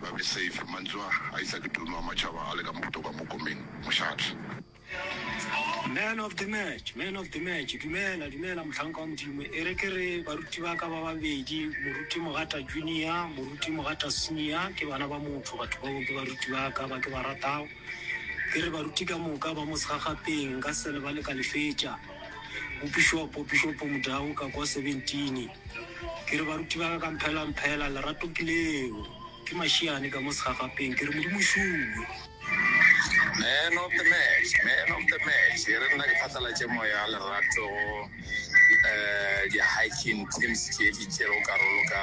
ba be safe mantšu a a isa ke tumo a matšhaba a le ka mogote kwa mokomeng mošate. Man of the match, Man of the match, Dumela, dumela mohlanka wa Modimo. E re ke re baruti ba ka ba babedi, Moruti Mogata Junior, Moruti Mogata Senior, ke bana ba motho. Batho bao ke baruti ba ka ba ke ba ratago. Ke re baruti ka moka ba mo segagapeng, nka se lebale ka le fetša. Bopišopo, Pišopo Mudau, ka kwa 17. Ke re baruti ba ka ka mphela, mphela, lerato ke leo. Ke mašiane ka mo segagapeng, ke re Modimo o šuwe. Man of the match, man of the match, e re nna ke phatlalatše moya lerato go um di-hiking teams tše di tšerego karolo ka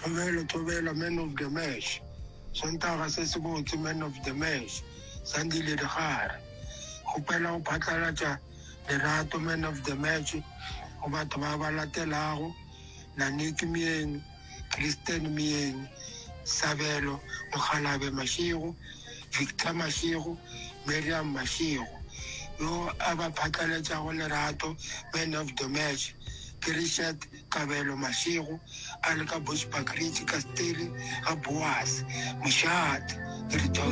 Thobelo, Thobela, Man of the Match, Sontaga se sebotse, Man of the Match, Sandile Digare, Kgopela go phatlalatša lerato, Man of the Match, go batho ba ba latelago, Naniki Myeni, Christian Myeni, Sabelo Mokgalabje Mashego, Victor Mashego, Miriam Mashego, Yo a ba phatlaletšago lerato, Man of the Match, ke Richard Kabelo Mashego a le ka Bushbuckridge ka Steyri ga Boase mošate.